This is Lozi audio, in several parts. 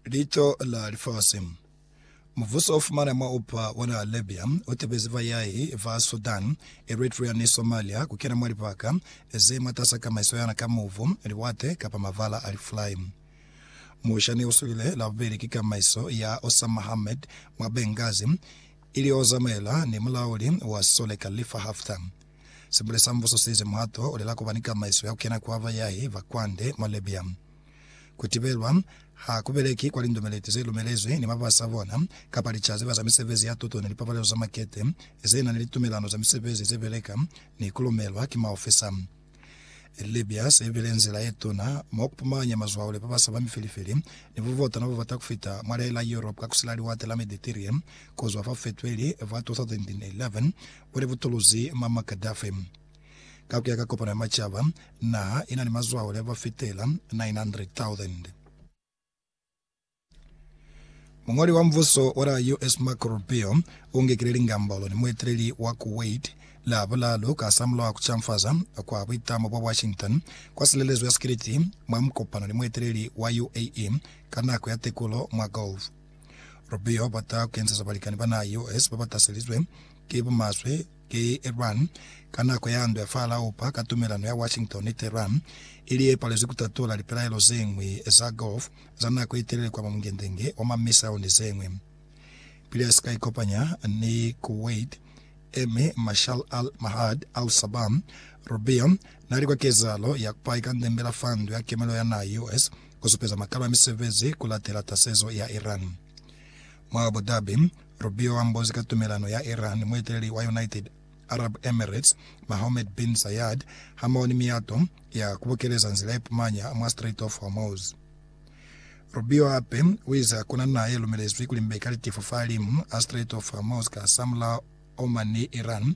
Lico la Lifasi. Mubuso o fumana mwa upa ona Libya o tebezi bayahi ba Sudan, Eritrea ni Somalia ku kena mwa libaka ze mwatasa kamaiso yana ka mubu, liwate, kapa mabala a lifulai. Musha ne uswile la bubeli ki kamaiso ya Osama Hamed mwa Benghazi, ili o zamaela ni mulauli wa sole Khalifa Haftar. Sibule sa Mbuso seize muhato olela kuba ni tamaiso ya kukena kwa bayahi ba kwande mwa Libya. Kutibelwa ha kubeleki kwa lindumeleti zelumelezwi ni babasi ba bona kapa lica zeba za misebezi ya tuto ni lipapalelo za makete zena ni litumelano za misebezi zebeleka ni kulumelwa ki maofisa. Libya seibile nzila yetuna mwa kupumanya mazwao le babasa ba mifilifili ni bubotana bobata kufita mwa lela Europe ka kusila Liwate la Mediterrane kuzwa fa Fetweli fa 2011 o li butuluzi Muammar Gaddafi. Ka ku ya ka Kopano ya Macaba, naha i na ni mazwahole ba fitela 900,000. Muñoli wa mubuso wa la US Marco Rubio u ngekile lingambolo ni mueteleli wa Kuwait Labulalu kasamulaho ku canfaza kwa buitamo bwa Washington kwa silelezo ya sikiliti mwa mukopano ni mueteleli wa UAE ka nako ya tekulo mwa Gulf. Rubio a bata ku enzeza balikani ba naha yeo hesi ba ba taselizwe ki bumaswe ki Iran ka nako ya ndwa ya fa Laupa ka tumelano ya Washington ni Tehran ili ye palezwi ku tatula lipelaelo ze ñwi za Gulf za nako ye telele kwa mamungendenge wa ma missile ni ze ñwi. Pili a si ka ikopanya ni Kuwait Emir Marshal Al Mahad Al Sabah, Rubio na li kwa kezahalo ya ku pahika ndembela fa Ndu ya Kemelo ya naha yeo hesi ku supeza makalo a misebezi ku latela tasezo ya Iran. Mwa Abu Dhabi, Rubio a mbozi ka tumelano ya Iran, mueteleli wa United Arab Emirates, Mohammed bin Zayed, hamoho ni miyato ya ku bukeleza nzila ye pumanya mwa Strait of Hormuz. Rubio hape u ize hakuna naha ye lumelezwi ku limbeka litifu fa limu a Strait of Hormuz ka samulaho Oman ni Iran,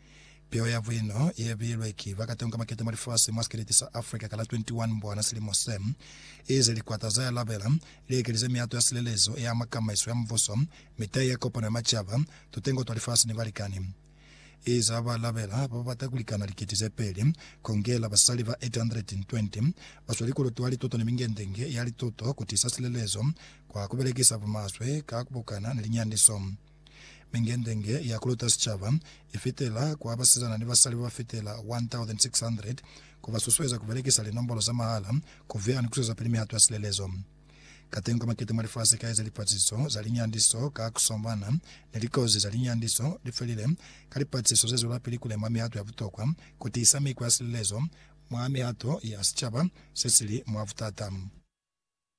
Piho ya Buino ye bilwe ki ba katengo ka makete mwa lifasi mwa sikeleti sa Africa ka la 21 Mbwana silimo se, ize likwata za yalabela li ekelize miyato ya silelezo ya makamaiso ya mubuso, mitai ya kopano ya macaba, tutengo twa lifasi ni balikani. Ize ha ba labela ba ba bata ku likana likiti ze peli, kongela basali ba 820 ba swa likulutu ha lituto ni mingendenge ya lituto ku tiisa silelezo kwa ku belekisa bumaswe ka ku bukana ni linyandiso. Mingendenge ya kuluta sicaba ifitela kwa basizana ni basali babafitela 1,600, kubasusueza kubelekisa linombolo za mahala, kuviha ni kuswezapili mihato ya silelezo. Kateñi kwa makete mwa lifasi kaeza lipaciso za linyandiso ka kuswamana ni likozi za linyandiso, lifelile ka lipaciso zezwelapili kulema mihato ya butokwa kutiisa mikwa ya silelezo mwa mihato ya sicaba sesili mwa butata.